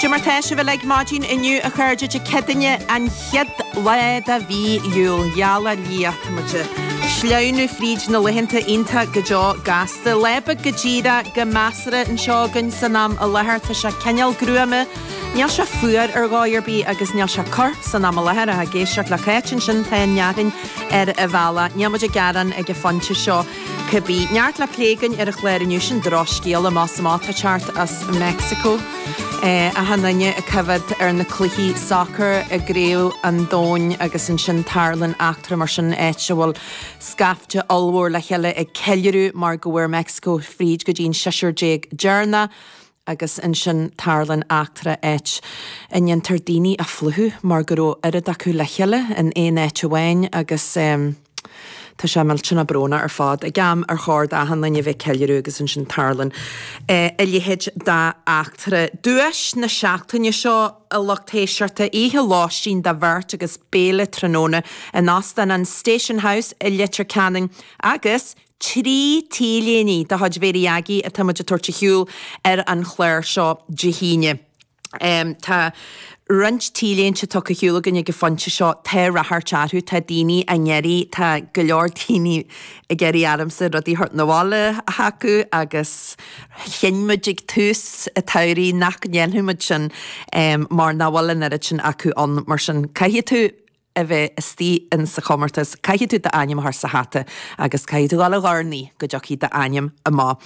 Cad é mar tá sibh uilig maidin inniu a chairde Dé Céadaoine an chéad lá de mhí Iúil. Gheall ar Dhia, tá muid ag sleamhnú fríd na laethanta iontach go deo gasta. Lá beag go díreach go measartha anseo againn san am i láthair. Tá sé cineál gruama. Níl sé fuar ar dhóigh ar bith agus níl sé ag cur san am i láthair. Ach ag éisteacht le Cáit ansin, tá an fhearthainn ar an bhealach. Níl muid ag gearán ag an phointe seo. Cibé, neart le plé againn ar an chlár inniu, sin drochscéala amach is amach atá ag teacht as Meicsiceo achan duine ag coimhead ar na cluichí sacair i gCraobh an Domhain agus ansin tarlaíonn eachtra mar sin, áit a bhfuil scaifte ollmhór le chéile ag ceiliúradh mar go bhfuair Meicsiceo fríd go dtí an seisear déag deireanach. agus ansin tarlaíonn eachtra áit a ndéantar daoine a phlúchadh mar go raibh oiread acu le chéile in aon áit amháin agus tá sé millteanach brónach ar fad. Ag am ar chóir d'achan duine a bheith ag ceiliúradh agus ansin tarlaíonn a leithéid d'eachtra. Duais na seachtaine seo a lucht éisteachta, oíche lóistín do bheirt agus béile tráthnóna in Óstán an Station House i Leitir Ceanainn agus Trí T-léine de chuid Mhary Aggie atá muid ag tabhairt ar shiúl ar an chlár seo Dé hAoine. Tá roinnt T-léinte tugtha ar shiúl againn ag an phointe seo, tá ráchairt orthu, tá daoine á n-iarraidh, tá go leor daoine ag iarraidh ormsa rudaí a thabhairt 'na bhaile chucu agus chinn muid ag tús an tsamhraidh nach ndéanfadh muid sin mar nach bhfuil an oiread sin acu ann mar sin caithfidh tú a bheith istigh in sa chomórtas, caithfidh tú d'ainm a chur sa hata agus caithfidh tú dul ag urnaí go dtiocfaidh d'ainm amach.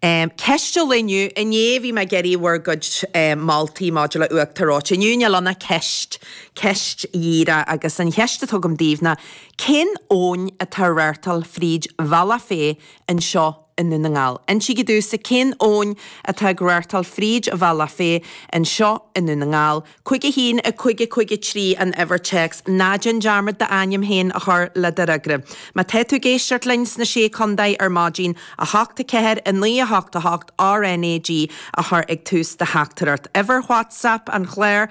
Ceist an lae inniu, inné bhí mé ag iarraidh bhur gcuid moltaí maidir le uachtar reoite. Inniu níl ann ach ceist, ceist dhíreach, agus an cheist atá agam daoibh ná, cén abhainn atá ag reáchtáil fríd Bhealach Féich anseo i nDún na nGall. Insígí domhsa cén abhainn atá ag reáchtáil fríd Bhealach Féich anseo i nDún na nGall. 5 1 5 5 3 an uimhir téacs. Ná déan dearmad d'ainm féin a chur le do fhreagra. Má tá tú ag éisteacht linn sna Sé Contae ar maidin, 8 4 9 8 8 RNAG a chur ag tús do theachtaireacht. Uimhir WhatsApp an chláir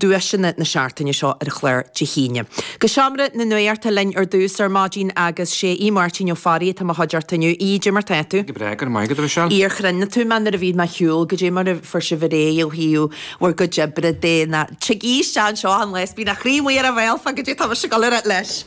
duaiseanna na seachtaine seo ar chlár Dé hAoine. Go Seomra na Nuachta linn ar dtús ar maidin agus is é Aodh Máirtín Ó Fearraigh atá i mo chuideachta inniu. Aodh, cad é mar tá tú? Go breá, go raibh maith agat, a Mhichelle. Aodh, ar chronaigh tú mé nuair a bhí mé ar shiúl, goidé mar a fuair sibh ar aghaidh ó thaobh bhur gcuid oibre de na. Tig Aodh isteach anseo achan lá is bíonn a chroí amuigh ar a bhéal fá goidé atá mise ag dul a ráit leis.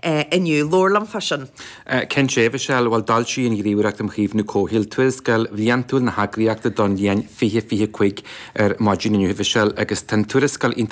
inniu. Labhair liom fá sin. Cinnte, a Mhichelle. Bhuel, d'fhoilsigh an Ghníomhaireacht um Chaomhnú Comhshaoil tuarascáil bhliantúil na heagraíochta don bhliain 2025 ar maidin inniu, a Mhichelle, agus tá an tuarascáil iontach.